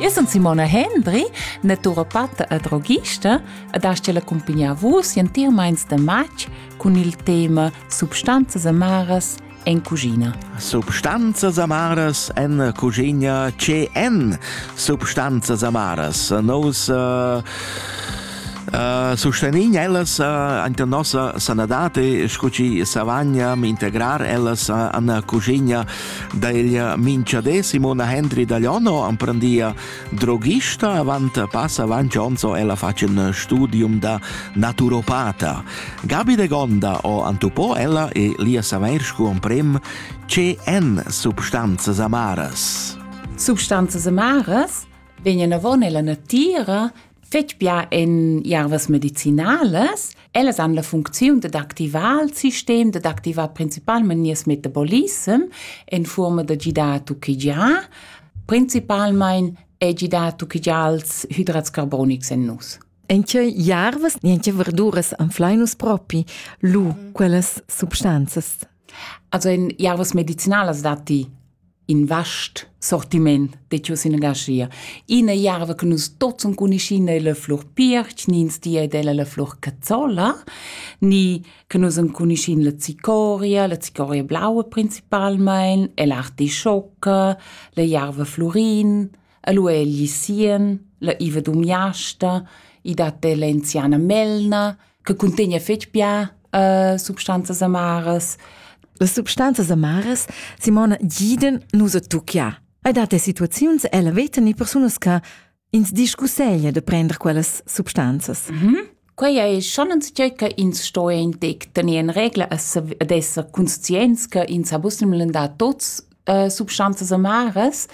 Io sun Simona Hendry, naturopatta e droghista ed hast la cumpignia vus entiirmaints da matg cun il tema Substanzas amaras en cucina. Substanzas amaras en cucina CN Substanzas amaras. Nos uh, uh, sustegnin ellas uh, ante nossa sanadate, scu ci savagna integrar ellas uh, an cucina Da ella minchadé Simona Hendry da Iono amprandia droghista avant passa avant ons ella facen studium da naturopata. Gabi de Gonda o antupò ella e lia saver scu amprem ce en substanzas amaras. Substanzas amaras vegnan avon ella natira fetg bia en ervas medicinalas. Ellas han la funcziun dad activar il sistem, dad activar principalmente nies metabolism en forma da gidar a tuchigiar. Principalmente è gidar a tuchigiar ils hidrats carbonics en nus. Enche jarvas, enche verduras anflai nus propi lu quellas substanzas. Also in ervas medicinalas datti in vast sortiment de tios inagascia. Ina erva che nus tots enconuschin è la flur pirch, ni ins di ed ella la flur cazzola, ni che nus enconuschin la zicoria, la zicoria blaua principalmain, e l'artischoca, la erva flurin, E lu è egli sien, la Iva Dumiasta, i dat della enziana melna, che cuntegna fetg bia uh, substanzas amaras. Las substanzas amaras Simona Giden nus a tucchia. Hai dat situaziuns ella veta ni persunas che ins discusseglia de prender quellas substanzas. Mm -hmm. Quei ei schon enzatgei che ins sto entec tener en regla e sav- ed esser conscients che ins ha bussemmelen da tots äh, substanzas amaras.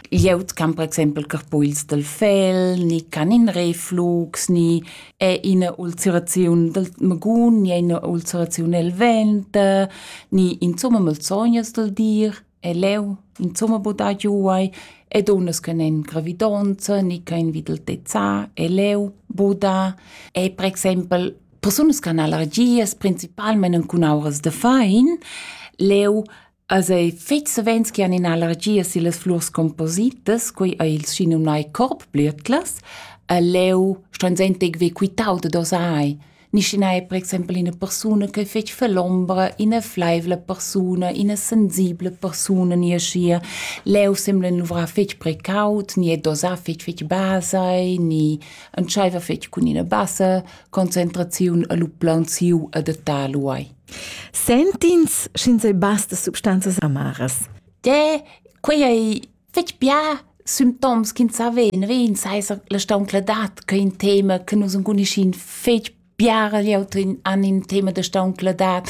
Glieud can per exempel carpuls del fel, ni can in reflux, ni è ina ulceraziun del magun, ni è ina ulceraziun el vent, ni insomma malsognas del dir. E leu insumma buca giuai e dunnas che n'en gravidonza ni che han vid il tezzà e leu buca e per exempel persunas che han allergias principalmein cun auras da fein leu also fetg savens che han in'allergia sillas flurs compositas quei ei il schinumnai Korbblittlas e leu ston sentir ve quitau da dosai Niscun ei per exempel ina persuna che fetg falombra, ina fleivla persuna, ina sensibla persuna ni aschia. Leu sembla el luvrar fetg precaut, ni è dosà fetg fetg basai, ni entscheiva fetg cun ina bassa concentraziun e lu plaunsiu a datar lu ei. Sentins sch'ins ei basta substanzas amaras? De, quei ei Fetg bia sün toms ch'ins sa veneren seisa la stauncladad ch'ei in tema che nus enconuschin fetg biara glieud han in tema da stauncladad,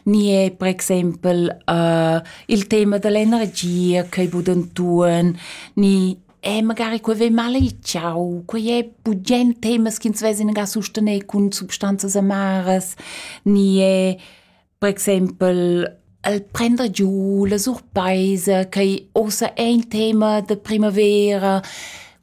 ni è per exempel uh, il tema dall'energia ch'ei bud entuorn, ni è magari quei vei maleigiau, quei è bugen temas ch'ins vesin ga sustener cun substanzas amaras, ni è Per exempel el prender giu la surpaisa, quei ussa è in tema da primavera,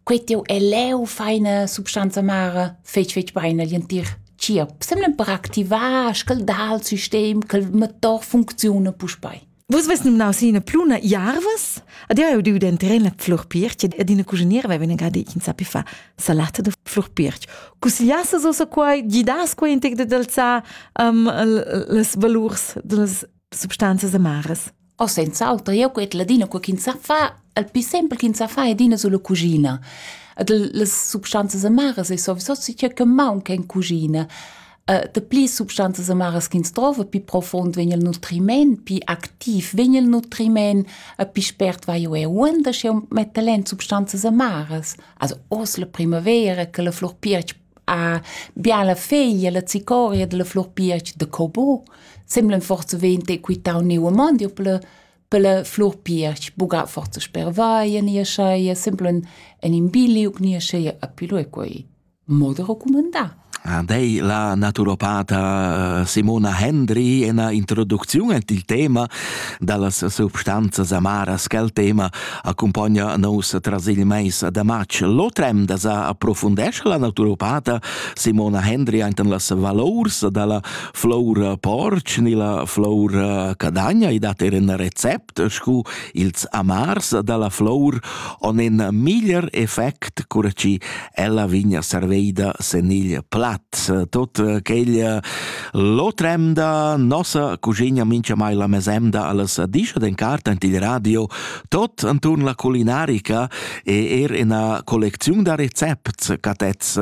quei tiu è leu feina substanza mara fetg fetg bein agl entir tgierp, semlem per activar, sch'el dà al sistem ch'el motor funcziuna puspei. Vus vest numnau si ina pluna jarvas? Ad io eu diu denteren la flurpirch ed ina cuschiniera veva ina gadi in sapi fa salata da flurpirch. Cusigliasses ossa quai, gidas quai intec dad alzar um, las valurs das substanzas amaras? O senz'altro, io quet ladina qua ch'in sa fa, al più sempre ch'in sa fa edina sulla cucina. Ad las substanzas amaras è sovso si che maunca in cucina. dapli substanzas amaras ch'ins drova, pi profund vegn il nutriment, pi activ vegn il nutriment, pi spert vai eu er uonda, sch'eu metta len substanzas amaras. Also oz la primavera, che la flur piertg ha biala feglia, la zicoria della flur piertg de cobo, semblen forse vente quitau neu amondio per la per la flur piertg, buga forse sper vaia nia scheia, semblen en in biliuc nia scheia, a pilu e quei. Mo da recumandar. Dei la naturopata eh, Simona Hendry ena introducziun et il tema dallas substanzas amaras quel tema accompagna nous tras il mais da match. L'otrem da sa approfundesce la naturopata Simona Hendry enten las valors dalla flor porc ni la flor eh, cadagna i dat er en recept scu ils amars dalla flour on in miglier effect cura chi ella vegn a serveida sen igl plaz. Tot quegl l'otremda nossa cuschigna mincha mai la mesemda allas discha den cart ant il radio, tot anturn la culinarica e er ina collecziun da recepts catets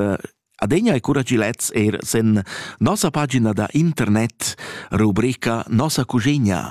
Adegna e cura chi lets er sen nossa pagina da internet rubrica Nossa cuschigna.